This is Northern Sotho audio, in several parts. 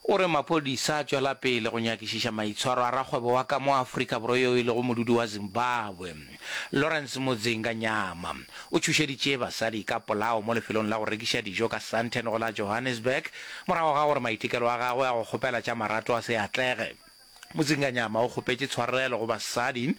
O re maphodisa a tšwela pele go nyakišiša maitshwaro a rakgwebo wa ka mo Afrika Borwa yo e lego modudi wa Zimbabwe, Lawrence Mudzinga Nyama. O tšhošeditše basadi ka polao mo lefelong la go rekiša dijo ka Sandton go la Johannesburg morago ga gore maitekelo a gagwe a go kgopela tša marato a se atlege. Mozinganyama o kgopetše tshwarelo go basadi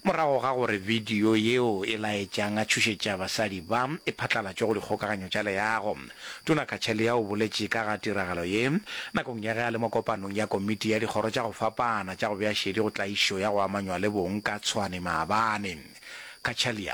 morago ga gore bidio yeo e laetšang a tšhošetša basadi ba e phatlalatšwe go dikgokaganyo tša leago. Tona Kachaliya o boletše ka ga tiragalo ye nakong ya ge a le mo kopanong ya Komiti ya Dikgoro tša go Fapana tša go Bea Šedi go Tlaišo ya go Amanywa le Bong ka Tshwane maabane. Kachaliya.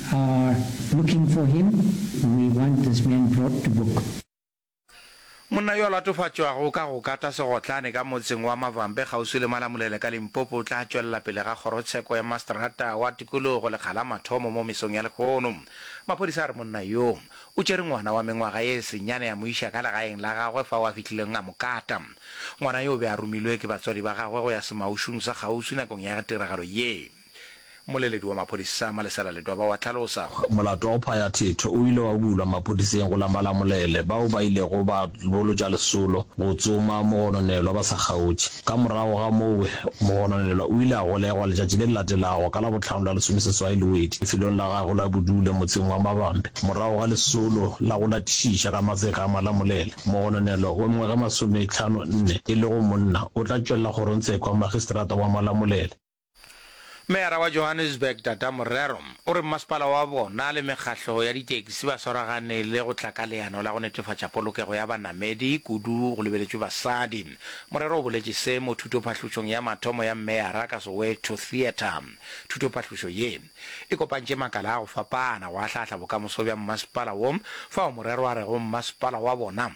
are looking for him, we want this man brought to book. Monna yo a latofatšwago ka go kata segotlane ka motseng wa Mavambe kgauswi le Malamulele ka Limpopo o tla tšwelela pele ga kgorotsheko ya masterata wa tikologo lekga la mathomo mo mesong ya lehono. Maphodisa a re monna yo o tšere ngwana wa mengwaga ye senyane a mo iša ka legaeng la gagwe fao a fihlileng a mo kata. Ngwana yo o be a romilwe ke batswadi ba gagwe go ya semaušung sa kgauswi nakong ya tiragalo ye. Mmoleledi wa maphodisa Malesela Ledoba wa hlalosa. Molato wa go phaya thetho o ile wa bulwa maphodiseng go la Malamulele bao ba ilego ba bolotša lesolo go tsoma mogononelwa ba sa kgaotše. Ka morago ga moo, mogononelwa o ile a golegwa letšatši le le latelago ka Labohlano la lesomeseswai Lwedi lefelong la gagwe la bodule motseng wa Mabambe. Morago ga lesolo la go latišiša ka matseka a Malamulele, mogononelwa wa mengwaga e masometlhano nne e lego monna o tla tšwella kgorongtsheko ya Magistrata wa Malamulele. Meyara wa Johannesburg Dada Morero o re mmasepala wa bona le mekgahlo ya ditaxi ba swaragane le go tla ka leano la go netefatša polokego ya banamedi kudu go lebeletšwe basadi. Morero o boletše se mo thutophahlušong ya mathomo ya Meyara ka Soweto Theatre. Thutophahlušo ye e kopantše makala a go fapana go ahlaahla bokamoso bja mmasepala wo fao Morero a rego mmasepala wa bona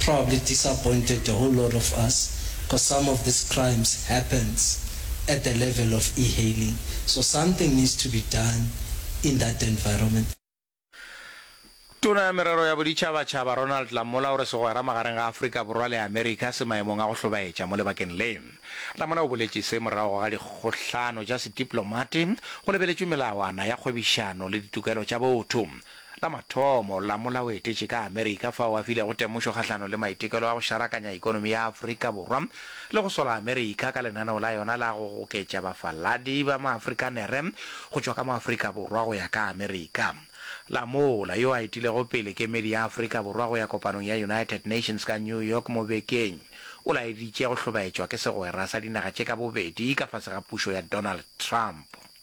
probably disappointed the whole lot of us cos some of this crimes happens at the level of e-hailing so something needs to be done in that environment. Tona ya Merero ya Boditšhabatšhaba Ronald Lamola o re segwera magareng ga Afrika Borwa le Amerika se maemong a go hlobaetša mo lebakeng le. Lamola o boletše se morago ga dikgohlano tša sedipolomate go lebeletšwe melawana ya kgwebišano le ditokelo tša botho. la mathomo la molaoetetši ka Amerika fao a filego temošo kgahlano le maitekelo a go šarakanya ekonomi ya Afrika Borwa le go sola Amerika ka lenaneo la yona la go goketša bafaladi ba Maafrikanere go tšwa ka mo Afrika Borwa go ya ka Amerika. La mola, yo a etilego pele kemedi ya Afrika Borwa go ya kopanong ya United Nations ka New York mo bekeng, o laeditše go hlobaetšwa ke segwera sa dinaga tše ka bobedi ka fase ga pušo ya Donald Trump.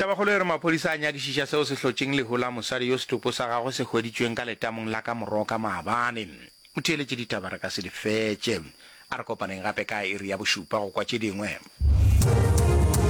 Tabakgolo e re maphodisa a nyakišiša seo se hlotšeng lehu la mosadi yo setopo sa gagwe se hweditšweng ka letamong la ka Moroka maabane. O theeletše ditaba re ka se di fetše. A re kopaneng gape ka iri ya bošupa go kwa tše dingwe.